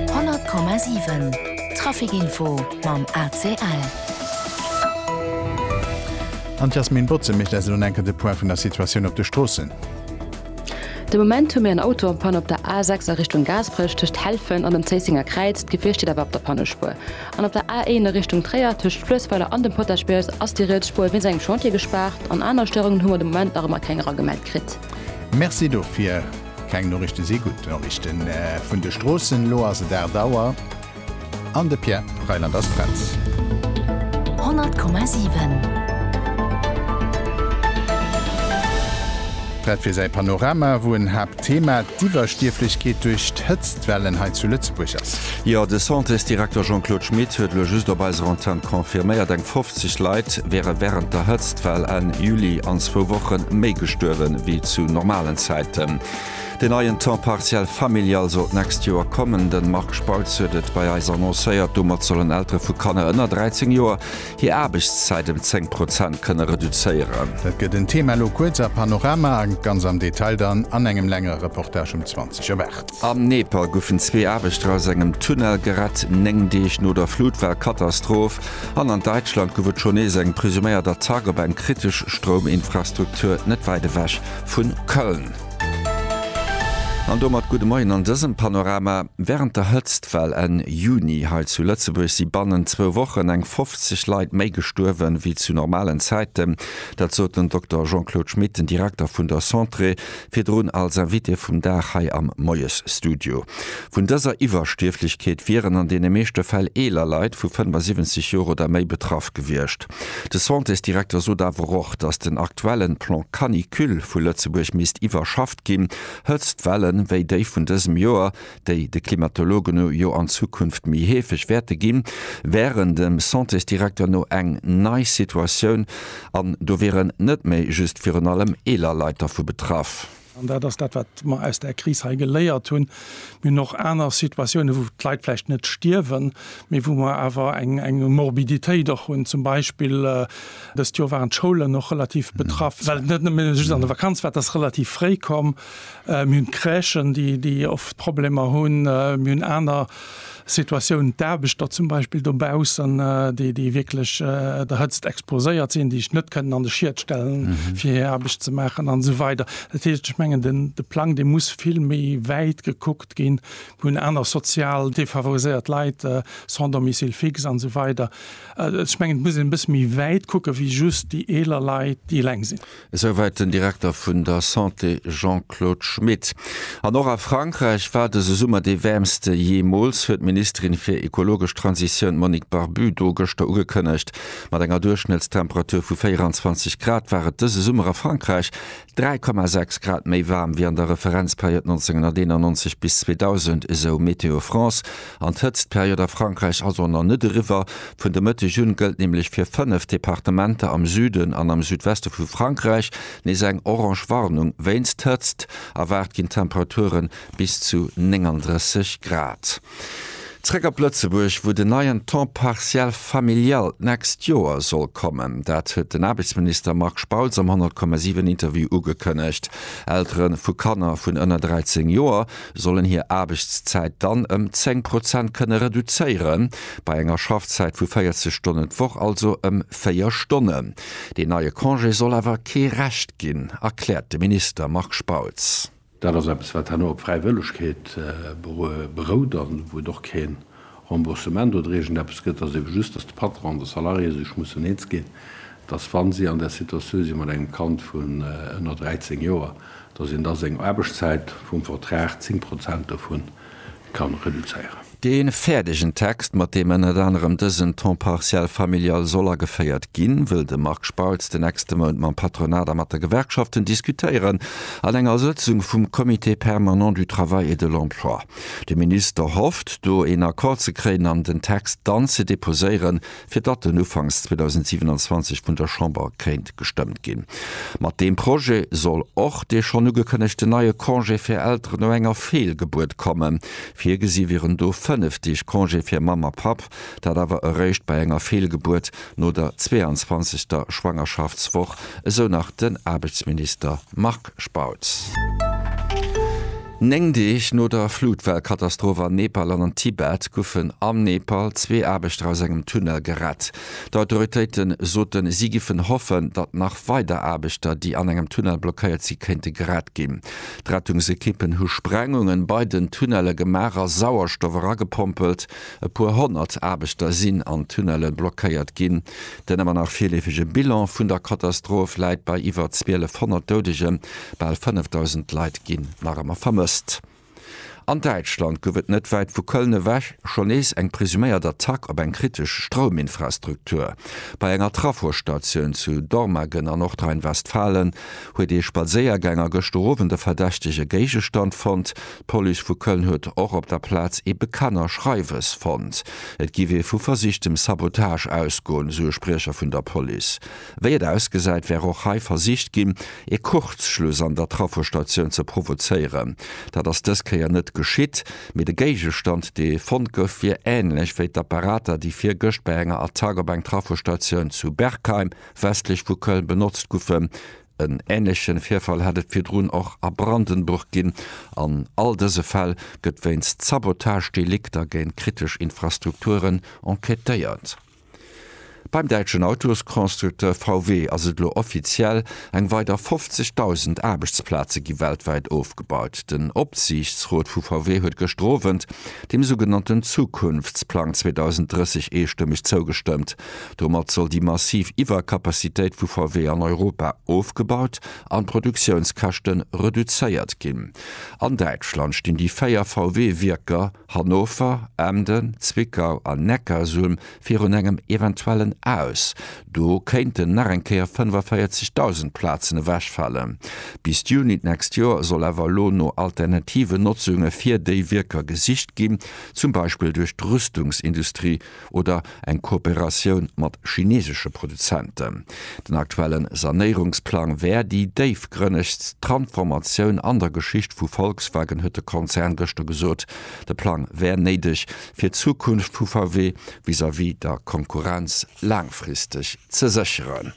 100,7 Traficinfo mam ACL. An d'Yasmine Botze mécht eis elo enker de Point vun der Situatioun op de Stroossen. De Moment hu mir en Auto an Panne op der A6 a Richtung Gaasperech tëscht Helfen an dem Zéissenger Kräiz. D'Gefier steet awer op der Pannespuer. An op der A1 a Richtung Tréier tëscht Fluessweiler an dem Potaschbiers ass déi riets Spuer wéinst engem Chantier gespaart. An aner Stéierungen hu mer de Moment nach ëmmer keng eragemellt kritt. Merci dofir. Keng Noriichten si gutt Noriichten vun de Stroossen. Elo ass et 8 Auer an de Pierre Reyland ass prett. 100,7. Prett fir säi Panorama, wou en Haaptthema d'Iwwerstierflechkeet duerch d'Hëtztwellen hei zu Lëtzebuerg ass. Jo, de Santés-Direkter Jean-Claude Schmit huet elo just op eiser Antenn confirméiert, eng 50 Leit wäre wärend der Hëtztwell Enn Juli an zwou Woche méi gestuerwe wéi zu normalen Zäiten. Deen neien Temps partiel familial soll d'nächst Joer kommen. De Marc Spautz huet et bei eis annoncéiert. Domat sollen Eltere vu Kanner ënner 13 Joer hir Aarbechtszäit ëm 10 Prozent kënne reduzéieren. Dat gëtt en Thema elo kuerz a Panorama a ganz am Detail dann an engem längere Reportage um 20 op 8. Am Nepal goufen zwee Aarbechter aus engem Tunnel gerett, néng Deeg no der Flutwellkatastroph. An an Däitschland gouf et schonn nees eng presuméiert Attack op eng kritesch Strouminfrastruktur net wäit ewech vu Köln. An domat gudde Moien an dësem Panorama. Wärend der Hëtztwell Enn Juni hei zu Lëtzebuerg si bannent zwou Wochen eng 50 Leit méi gestuerwe wéi zu normalen Zäiten. Dat sot den Dokter Jean-Claude Schmit, den Direkter vun der Centre Virdrun als Invité vum Dag hei am Moiesstudio. Vun dëser Iwwerstierflechkeet wieren an deene meeschte Fäll eeler Leit vu 75 Joer oder méi betraff gewiescht. De Santésdirekter sot awer och, datt den aktuellen Plan Canicule vu Lëtzebuerg misst iwwerschafft ginn. Hëtztwellen, wéi déi vun dësem Joer, déi de Klimatologen no jo an Zukunft méi heefeg wäerte ginn, wären dem Santésdirekter no eng nei Situatioun an do wieren net méi just virun allem eeler Leit dervu betraff. An dat ass dat, wat mer aus där Kris hei geléiert hunn. Mir hunn och aner Situatiounen, wou d'Leit vläicht net stierwen, mee wou mer awer eng Morbiditéit och hunn. Zum Beispill dëst Joer waren d'Schoulen och relativ betraff, well et net nëmme just an der Vakanz war, dat ass relativ fréi komm, Mir hunn d'Crèchen, déi oft Problemer hunn. Mir hunn aner Situatiounen, d'Aarbechter zum Beispill dobaussen, déi wierklech der Hëtzt exposéiert sinn, déi sech net kënnen an de Schiet stellen, fir hir Aarbecht ze maachen an esou weider. Dat heescht, ech mengen, de Plang, dee muss vill méi wäit gekuckt ginn. Mir hunn aner sozial defavoriséiert Leit, sans domicile fixe an esou weider. Ech mengen, et muss een e bësse méi wäit kucken, wéi just déi eeler Leit, déi eleng sinn. Esouwäit den Direkter vun der Santé Jean-Claude Schmit. An och a Frankräich war dëse Summer dee wäermste jeemools, huet d'Ministerin fir ekologesch Transitioun Monique Barbudo gëschter ugekënnegt. Mat enger Duerchschnëttstemperatur vu 24 Grad war et dëse Summer a Frankräich 3,6 Grad méi waarm wéi an der Referenzperiod 1991 bis 2000, esou Météo France. An d'Hëtztperiod a Frankräich ass och nach net eriwwer. Vun de Mëtteg un gëllt nämlech fir fënnef Departementer am Süden an am Südweste vu Frankräich nees eng orange Warnung wéinst Hëtzt. Erwaart ginn Temperature bis zu 39 Grad. Zréck op Lëtzebuerg, wou den neien Temps partiel familial d'nächst Joer soll kommen. Dat huet den Aarbechtsminister Marc Spautz am 100,7 Interview ugekënnegt. Eltere vu Kanner vun ënner 13 Joer sollen hir Aarbechtszäit dann ëm 10 Prozent kënne reduzéieren, bei enger Schaffzäit vu 40 Stonnen d'Woch also ëm 4 Stonnen. Deen neie Congé soll awer kee Recht ginn, erkläert de Minister Marc Spautz. Dat ass eppes, wat herno op Fräiwëllegkeet berout a wou et och keen Remboursement oder iergend eppes gëtt, ass ebe just, dass de Patron an de Salarié sech mussen eens ginn, dass wa si an där Situatioun si mat engem Kand vun ënner 13 Joer, dass een da seng Aarbechtszäit vum Vertrag 10 Prozent dovun kann reduzéieren. Dee fäerdegen Text, mat deem ënnert anerem dësen Temps partiel familial soll ageféiert ginn, wëll de Marc Spautz den nächste Mount mam Patronat a mat de Gewerkschaften diskutéieren an enger Sëtzung vum Comité permanent du travail et de l'emploi. De Minister hofft, do een Accord ze kréien an den Text dann ze deposéieren, fir datt en ufanks 2027 vun der Chamber kéint gestëmmt ginn. Mat deem Projet soll och dee schonn ugekënnegten neie Congé fir Elteren no enger Feelgebuert kommen. Virgesi wieren do fënnef Deeg Congé fir Mamm a Papp, dat awer eréischt bei enger Feelgebuert no der 22. Schwangerschaftswoch, esou nach den Aarbechtsminister Marc Spautz. Néng Deeg no der Flutwellkatastroph an Nepal an am Tibet goufen am Nepal zwee Aarbechter aus engem Tunnel gerett. D'Autoritéite soten, si giffen hoffen, datt nach weider Aarbechter, déi an engem Tunnel blockéiert sinn, kéinte gerett ginn. D'Rettungsekippen hu Sprengungen bei den Tunnelle gemaach a Sauerstoff eragepompelt. E puer honnert Aarbechter sinn an Tunnelle blockéiert ginn. Den ëmmer nach virleefege Bilan vun der Katastroph läit bei iwwer 1200 Doudegen, bal 5.000 Leit ginn nach ëmmer vermësst. An Däitschland gouf et net wäit vu Köln ewech schonn nees eng presuméiert Attack op eng kritesch Strouminfrastruktur. Bei enger Trafostatioun zu Dormagen an Nordrhein-Westfalen huet ee Spadséiergänger gëschter Owend e verdächtege Géigestand fonnt, D'Police vu Köln huet och op der Plaz ee Bekanner Schreiwes fonnt. Et géif ee vu versichtem Sabotage ausgoen, esou e Spriecher vun der Police. Wéi et ausgesäit, wär och hei versicht ginn, ee Kurzschluss an der Trafostatioun ze provozéieren. Dat ass dës Kéier net geschitt, mee de Géigestand, dee fonnt gouf, wier änlech wéi d'Apparater, déi virgëscht bei enger Attack op eng Trafostatioun zu Berkheim, westlech vu Köln, benotzt goufen. En änleche Virfall hat et virdrun och a Brandenburg ginn. An all dëse Fäll gëtt wéinst Sabotagedelikter géint kritesch Infrastrukturen enquêtéiert. Beim däitschen Autosconstructeur VW ass et elo offiziell, Eng weider 50.000 Aarbechtsplaze gi weltwäit ofgebaut. Den Opsiichtsrot vu VW huet gëschter Owend dem sougenannten Zukunftsplang 2030 eestëmmeg zougestëmmt. Domat soll déi massiv Iwwerkapazitéit vu VW an Europa ofgebaut an d'Produktiounskäschte reduzéiert ginn. An Däitschland stinn déi véier VW-Wierker Hannover, Emden, Zwickau an Neckarsulm virun engem eventuellen Aus. Do kéinten nach eng Kéier 45.000 Plazen ewechfalen. Bis Juni d'nächst Joer soll awer elo no alternativen Notzunge fir déi Wierker gesicht ginn, zum Beispill duerch d'Rüstungsindustrie, oder eng Kooperatioun mat chinesesche Produzenten. Den aktuellen Sanéierungsplang wär déi déifgrënnegst Tranformatioun an der Geschicht vu Volkswagen, huet de Konzern gëschter gesot. De Plang wär néideg, fir d'Zukunft vu VW vis-à-vis der Konkurrenz laangfristeg ze sécheren.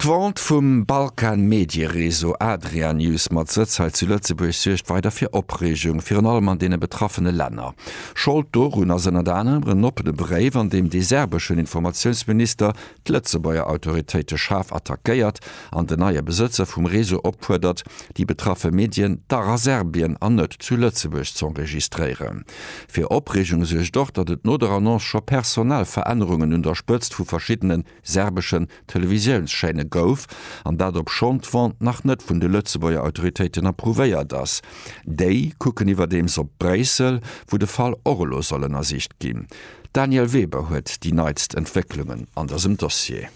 D'Vente vum Balkan Mediereseau Adrianews mat Sëtz hei zu Lëtzebuerg suergt weider fir Opreegung, virun allem an deene betraffene Länner. Schold dorun ass ënnert anerem en oppene Bréif, an deem dee serbeschen Informatiounsminister d'Lëtzebuerger Autoritéite schaarf attackéiert an den neie Besëtzer vum Reseau opfuerdert, déi betraffe Medien dach a Serbien an net zu Lëtzebuerg z'enregistréieren. Fir Opreegung suergt och, datt et no der Annonce scho personell Verännerungen un der Spëtzt vu verschiddene serbeschen Televisiounschaîne gouf, an dat obschonn d'Vente nach net vun de Lëtzebuerger Autoritéiten approuvéiert ass. Déi kucken iwwerdeems op Bréissel, wou de Fall och elo soll ënnersicht ginn. D'Danièle Weber huet déi neitst Entwécklungen an dësem Dossier.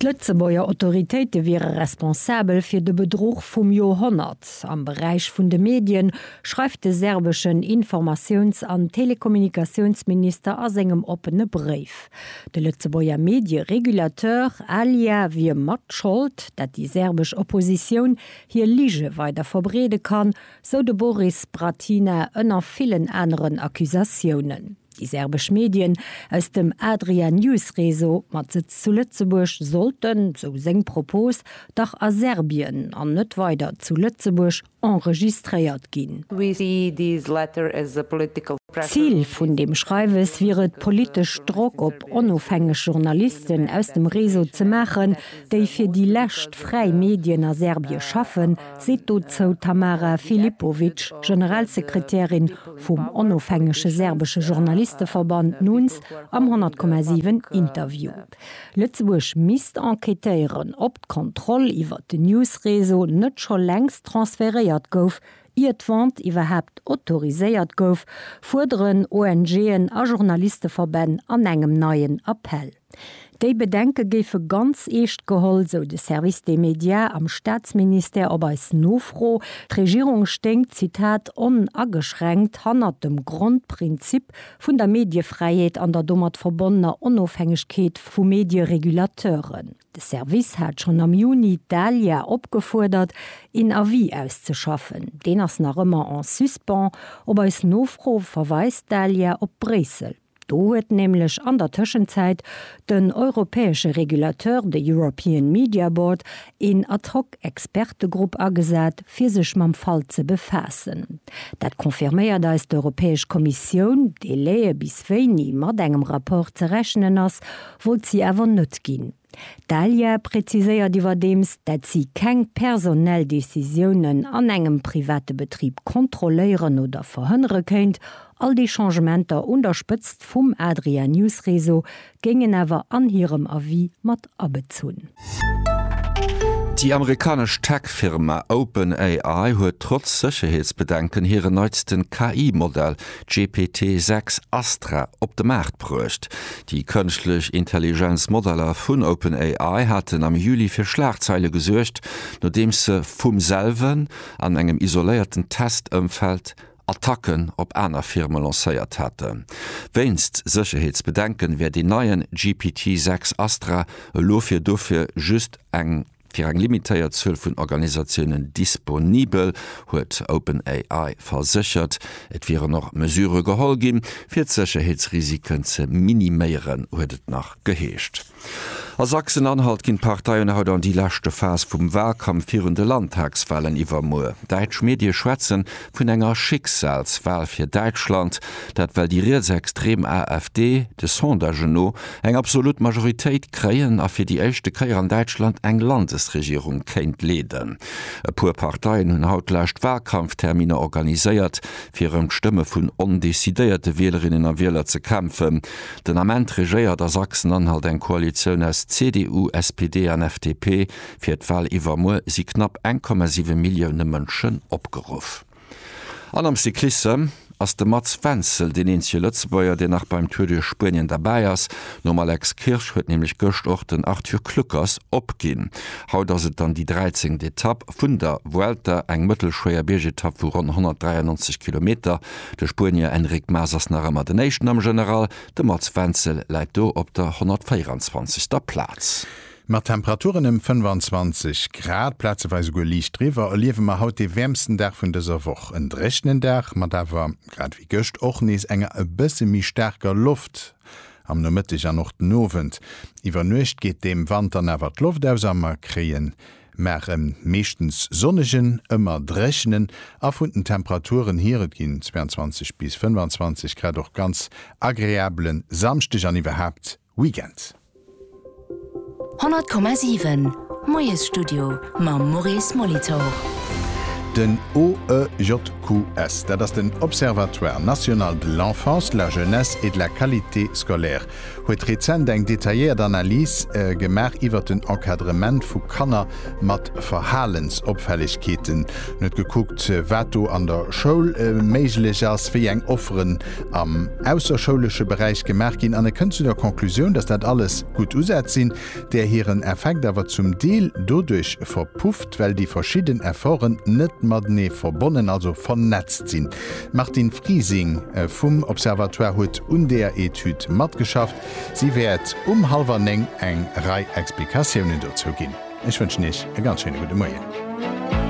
D'Lëtzebuerger Autoritéite wiere responsabel fir de Bedruch vum Joerhonnert am Beräich vun de Medien, schreift de serbeschen Informatiouns an Telekommunikatiounsminister a sengem oppene Bréif. De Lëtzebuerger Medieregulateur ALIA wier mat Schold, dat déi serbesch Oppositioun hir Lige weider verbreede kann, sou de Boris Bratina ënner villen aneren Accusatiounen. Déi serbesch Medien aus dem Adria News Réseau mat Sëtz zu Lëtzebuerg sollten, sou seng Propos, dach a Serbien an net weider zu Lëtzebuerg enregistréiert ginn. Zil vun deem Schreiwes wier et, politesch Drock op onofhängeg Journalisten aus dem Réseau ze maachen, déi fir déi lescht fräi Medien a Serbie schaffen, seet dozou d'Tamara Filipovic, Generalsekretärin vum onofhängege serbesche Journalisteverband NUNS am 100,7 Interview. Lëtzebuerg misst enquêtéieren, ob d'Kontroll iwwer den News-Réseau net scho längst transferéiert gouf, ier d'Vente iwwerhaapt autoriséiert gouf, fuerderen ONGen a Journalisteverbänn an engem neien Appell. Déi Bedenke géife ganz eescht geholl, sou de Service des Médias am Staatsministère op eis Nofro. D'Regierung stéing, Zitat, onageschränkt hannert dem Grondprinzip vun der Mediefräiheet an der domat verbonnener Onofhängegkeet vu Medieregulateuren. De Service hat schonn am Juni d'ALIA opgefuerdert, een Avis auszeschaffen. Deen ass nach ëmmer en suspens. Op eis Nofro verweist d'ALIA op Bréissel. Do huet nämlech an der Tëschenzäit den europäesche Regulateur, de European Media Board, een ad hoc Expertegrupp agesat, fir sech mam Fall ze befaassen. Dat confirméiert eis d'Europäesch Kommissioun. Délaië bis wéini mat engem Rapport ze rechnen ass, wollt si awer net ginn. D'Alya präziséiert iwwerdeems, dat si keng personell Decisiounen an engem private Betrib kontrolléieren oder verhënnere kéint. All déi Changementer un der Spëtzt vum Adria News Réseau géingen awer an hirem Avis mat abezunn. Déi amerikanesch Tech-Firma OpenAI huet trotz Sécherheetsbedenken hiren neitsten KI-Modell GPT 6 Astra op de Maart bruecht. Déi kënschtlech Intelligenz-Modeller vun OpenAI haten am Juli fir Schlagzeile gesuergt, nodeems se vum selwen, an engem isoléierten Test-Ëmfeld, Attacken op aner Firme lancéiert haten. Wéinst Sécherheetsbedenken, wär deen neien GPT 6 Astra elo fir dofir just eng. Fir eng limitéiert Zuel vun Organisatiounen disponibel, huet OpenAI verséchert. Et wieren och Mesurë geholl ginn, fir d'Sécherheetsrisiken ze miniméieren, huet et nach geheescht. A Sachsen-Anhalt ginn d'Parteien haut an déi leschte Phas vum Walkampf virun de Landtagswalen iwwermuer. Däitsch Medie schwätzen vun enger Schicksalswal fir Däitschland, dat well déi rietsextrem AfD, de Sondagen no, eng absolut Majoritéit kréien a fir déi éischte Kéier an Däitschland eng Landesregierung kéint leeden. E puer Parteien hunn haut d'lescht Walkampfterminer organiséiert, fir ëm d'Stëmme vun ondecidéierte Wielerinnen a Wieler ze kämpfen. Den Ament regéiert a Sachsen-Anhalt eng Koalitioun aus CDU, SPD an FDP. Fir d'Wal iwwermuer si knapp 1,7 Millioune Mënschen opgeruff. An am Cyclissem ass de Mats Wenzel deen eenzege Lëtzebuerger, deen nach beim Tour duerch Spuenien derbäi ass. Nom Alex Kirsch huet nämlech gëscht och den Arthur Kluckers opginn. Haut ass et dann déi dräizéngt Etapp vun der Vuelta, eng mëttelschwéier Biergetapp vu ronn 193 Kilometer. De Spuenier Enric Mas ass nach ëmmer den Éischten am General, de Mats Wenzel läit do op der 124. Plaz. Mat Temperaturen ëm 25 Grad, plazeweis esouguer liicht driwwer, erliewe mer haut dee wäermsten Dag vun dëser Woch. En dréchnen Dag mat awer, grad ewéi gëscht, och nees enger e bësse méi staarker Loft am Nomëtteg an och den Owend. Iwwer Nuecht geet deem Wand dann awer d'Loft aus a mer kréie mar en meeschtens sonnegen, ëmmer dréchnen a vun den Temperaturen hier, et ginn 22 bis 25 Grad, och ganz agreabele Samschdeg an iwwerhaapt Weekend. 100,7 Moiesstudio mam Maurice Molitor. Den OEJQS, dat ass den Observatoire National de l'Enfance, de la Jeunesse et de la Qualité Scolaire, huet rezent eng detailléiert Analys gemaach iwwert den Encadrement vu Kanner mat Verhalensopfällegkeeten. En huet gekuckt, wat do an der Schoul méiglech ass, wéi eng Offeren am ausserschoulesche Beräich gemaach ginn an e kënnt zu der Conclusioun, dass dat alles gutt Usätz sinn, där hiren Effekt awer zum Deel doduerch verpufft, well déi verschidden Efforten net matenee verbonnen, also vernetzt sinn. D'Martine Frising vum Observatoire huet un deer Etüd matgeschafft. Si wäert um hallwer néng eng Rei Explikatiounen dozou ginn. Ech wënschen Iech e ganz schéine gudde Moien.